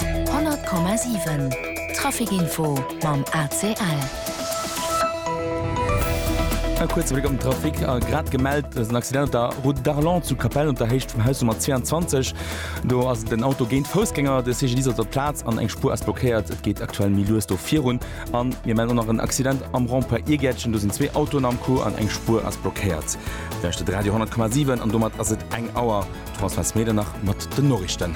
100,7 Traficinfo mam ACL. E kuerze Bléck op den Trafic a grad gemellt ass en Accident op der Route d'Arlon zu Kapell unter Héicht vum Haus Nummer 22. Do ass den Auto géint Foussgänger, de CGDIS op der Plaz an eng Spur ass blockéiert. Et geet aktuell méi lues do virun an mir melden och nach en Accident am Rond-point Iergäertchen. Do sinn zwee Autoen am Coup an eng Spur ass blockéiert. Lauschtert Radio 10,7 an domat ass et eng Auer. D'Françoise Medernach mat den Noriichten.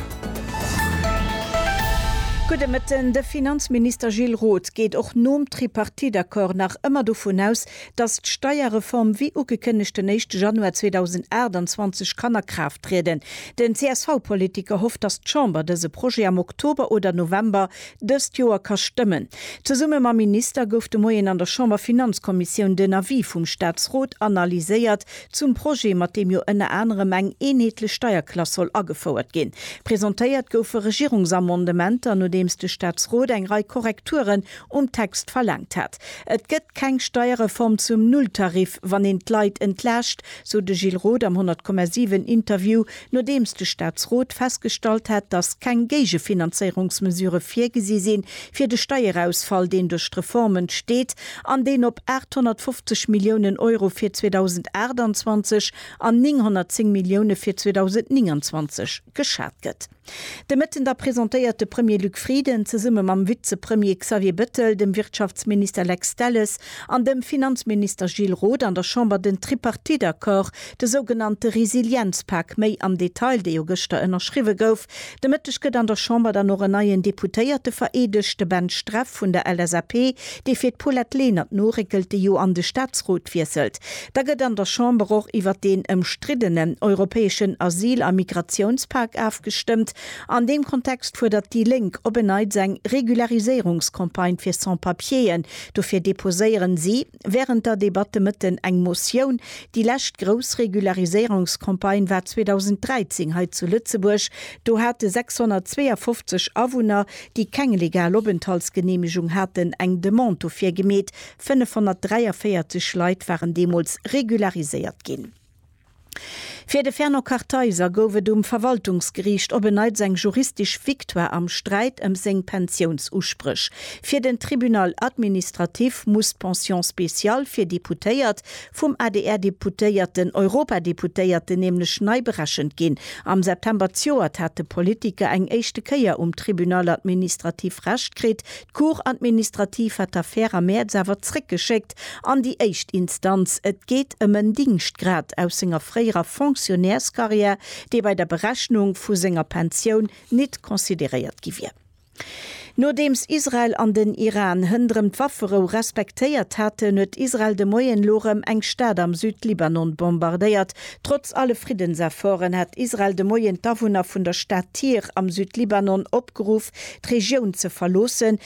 Gudde Mëtten. De Finanzminister Gilles Roth geet och nom Tripartite-Accord nach ëmmer dovun aus, datt d'Steierreform wéi ugekënnegt den éischte Januar 2028 kann a Kraaft trieden. Den CSV-Politiker hofft, datt d'Chamber dëse Projet am Oktober oder November dëst Joer ka stëmmen. Zesumme mam Minister gouf de Moien an der Chamberfinanzkommissioun den Avis vum Staatsrot analyséiert, Zum Projet, mat deem jo ënner anerem eng eenheetlech Steierklass soll agefouert ginn. Presentéiert goufe Regierungsamendementer, nodeems de Staatsrot eng Rei Korrekturen um Text verlaangt hat. Et gëtt keng Steierreform zum Nulltarif, wann een d'Leit entlaascht, sou de Gilles Roth am 100,7 Interview Nodeems de Staatsrot festgestallt hat, datt keng Géigefinanzéierungsmesurë virgesi sinn, fir de Steierausfall, deen duerch d'Reform entsteet an deen op 850 Milliounen Euro fir 2028 an 910 Millioune fir 2029 geschat gëtt. De Mëtten da presentéiert de Premier Luc Frieden zesumme mam Vizepremier Xavier Bettel, dem Wirtschaftsminister Lex Delles an dem Finanzminister Gilles Roth an der Chamber den Tripartite-Accord De sougenannte Resilienzpak méi am Detail, dee jo gëschter ënnerschriwwe gouf. De Mëtteg gëtt an der Chamber dann och en neien Deputéierte vereedegt, de Ben Streff vun der LSAP, dee fir d'Paulette Lenert noréckelt, déi jo an de Staatsrot wiesselt. Da gëtt an der Chamber och iwwert deen ëmstriddenen europäeschen Asyl a Migratiounspak afgestëmmt. An deem Kontext fuerdert déi Lénk op en Neits eng Regulariséierungscampagne fir Sans-Papieren. Dofir deposéieren si. während der Debatt de Mëtten eng Motioun, déi lescht grouss Regulariséierungscampagne war 2013 hei zu Lëtzebuerg, do hate 652 Awunner, déi keng legal Openthaltsgeneemegung haten, eng Demande dofir gemeet. 543 Leit waren deemools regulariséiert ginn. Fir de Fernand Kartheiser gouf et um Verwaltungsgeriicht op en Neits eng juristisch Victoire am Sträit ëm seng Pensiounsuspréch. Fir den Tribunal administratif muss d'Pension spéciale fir Deputéiert vum ADR-Deputéierten, Europadeputéierten nämlech nei berechent ginn. Am September zjoert hat de Politiker eng éischte Kéier um Tribunal administratif Recht kritt. D'Cour administrative hat d'Affär am Mäerz awer zréckgeschéckt. direkt an déi éischt Instanz. Et geet ëm en Dingschtgrad aus senger fréierer Fonctionnairscarrière, dee bei der Berechnung vu senger Pensioun nit consideréiert gi wier. Nodeems Israel an den Iran hënderëm d'Wafferou respektéiert haten, huet Israel de Moien elo erëm eng Stad am Südlibanon bombardéiert. Trotz alle Friddensefforten hat Israel de Moien d'Awunner vun der Stad Tyr am Südlibanon opgeruff, d'Regioun ze verloossen,